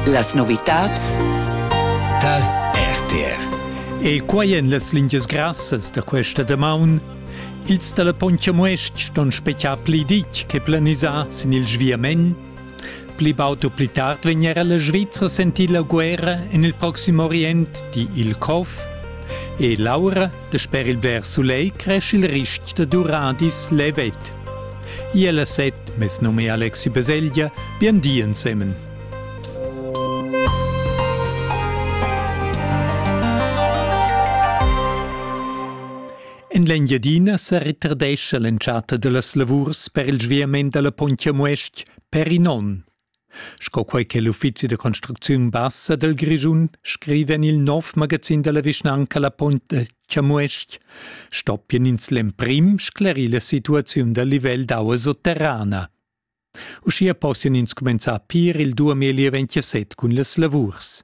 Las novitads tal RTR. E quai en las lingias grassas da questa damaun. Ils dalla Pontchamuest ston spetar pli ditg che planisà sin il sviament. Pli baud u pli tard vegn era la Svizra sentir la guerra en il proxim Orient, di il COF. E Laura Sper il bler sulegl cresch il rist da duradis levet. Iel a set, mes num è Alexi Beselgia, bien di ensemen. En l'Engiadina sa retardescha l'entschatta da las lavurs per il sviament da la Pontia Muest per in onn. Sco quei che l'uffizi da construcziun bassa dal Grischun scriva en il nov magazin dalla vischnanca La Pont de Chamues-ch, stoppien ins l'emprim sclerir la situaziun dal livel d'aua sotterrana. Uschia possian ins cumenzar pir il 2027 cun las lavurs.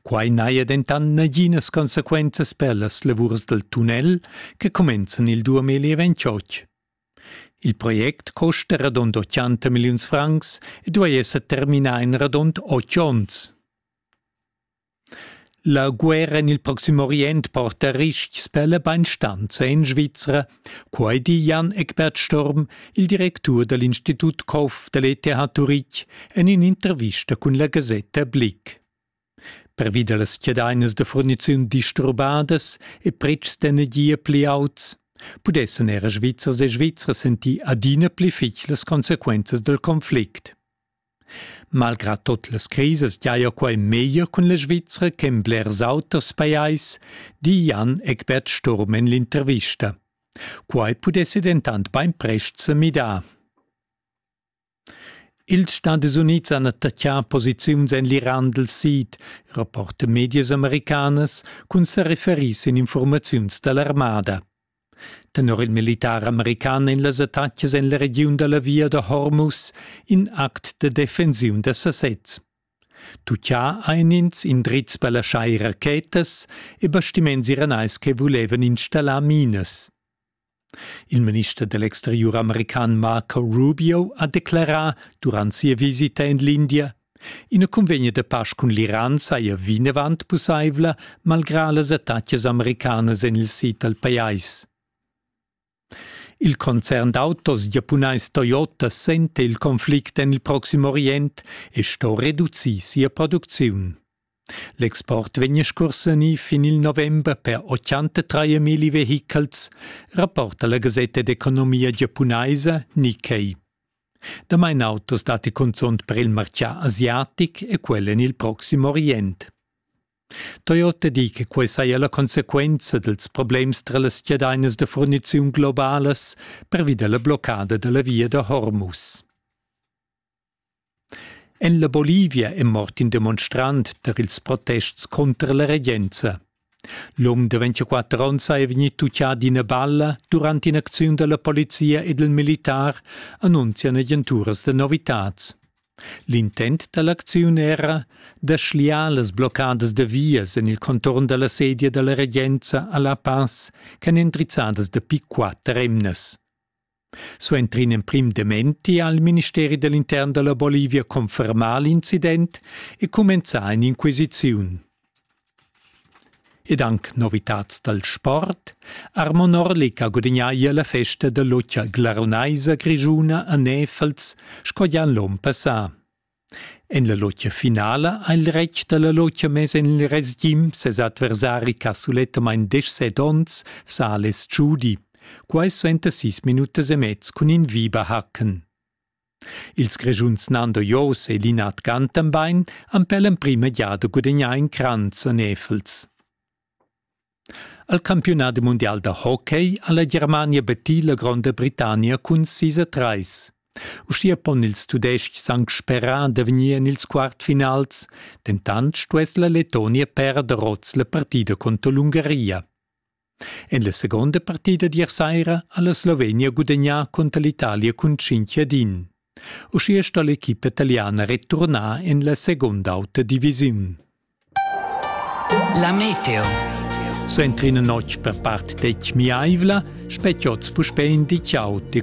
Quai n'haja dentant naginas consequenzas per las lavurs dal tunnel che cumenzan il 2028. Il project custa radund otganta milliuns francs e duai esser terminà en radund otg onns. La guerra en il Proxim Orient porta ristgs per la bainstanza en Svizra, quai di Jan Eckbert Sturm, il directur da l'Institut Koff da l'ETH Turich en in'intervista cun la gasetta Blick. Pervi da las chiadainas da furniziun disturbadas e pretschs d'energia pli auts pudessan era Svizzers e Svizras sentir adina pli fitg las consequenzas dal conflict. Malgrà tot las crisas giaja quai meglier cun la Svizra che en blers auters pajais, di Jan Egbert Sturm en l'intervista. Quai pudessi dentant bainprest sa midar. Ils Stadis Unids han attaccà posiziuns en l'Iran dal sid, rapporta medias americanas, cun sa referir sin infurmaziuns da l'armada. Tenor il militar american en las attacas en la regiun da la via da Hormuz in act da defensiun da sasez. Tuccià ein ins indrizs per laschar rachetas e bastiments iranais che vulevan installar minas. Il minister da l'exteriur american Marco Rubio ha declerà durant sia visita en l'India Ina cunvegna da pasch cun l'Iran saja vinavant pussaivla, malgrà las attacas americanas en il sid dal pajais. Il concern d'autos giapunais Toyota senta il conflict en il Proxim Orient e sto reducir sia producziun. L'export vegn scursanì fin il november per 83 milli vehichels, rapporta la gasetta d'economia giapunaisa Nikkei. Damain autos datti cunzunt per il martgà asiatic e quel en il proxim Orient. Toyota di che quai saja la consequenza dals problems tra las chadainas da furniziun globalas pervi da la bloccada da la via da Hormuz. En la Bolivia è mort in demonstrant tar ils protests cunter la regenza. L'um da 24 onns è vegnì tuccà d'ina balla durant in'acziun da la polizia ed il militar, annunzian agenturas da novitads. L'intent da l'acziun era da schliar las bloccadas da vias en il contorn da la sedia da la regenza a La Paz ch'èn endrizzadas dapi quatter emnas. Suenter in emprim dementi ha il ministeri dell'intern della Bolivia confermà l'incident e cumenzà in'inquisiziun. Ed anche novitats dal sport, Armo Norlik ha gudagnà ier la festa da lotgia glarunaisa grischuna a Nefels sco già l'onn passà. En la lotgia finala ha il retg dalla lotgia mess en il resgim ses adversari ch'ha sulettamain deschset onns, Sales Giudi. Quai suenter sis minutas e mez cun in Viberhacken. Ils Grischuns Nando Jos e Linard Gantenbein han per l'emprima giada gudagnà in cranz a Nefels. Al campiunadi mundial da hockey ha la Germania battì la Gronda Britannia cun sis a trais. Uschia pon ils Tudestgs anc sperar da vegnir en ils quartfinals, dentant stuess la Letonia perder oz la partida contro l'Ungaria. En la seconda partida d'ier saira ha la Slovenia gudagnà conter l'Italia cun 5 ad 1. Uschia sto l'equipa taliana returnar en la segunda auta divisiun. La meteo. So entri in notg per part detg miaivla, spetiots puspè in di ciao e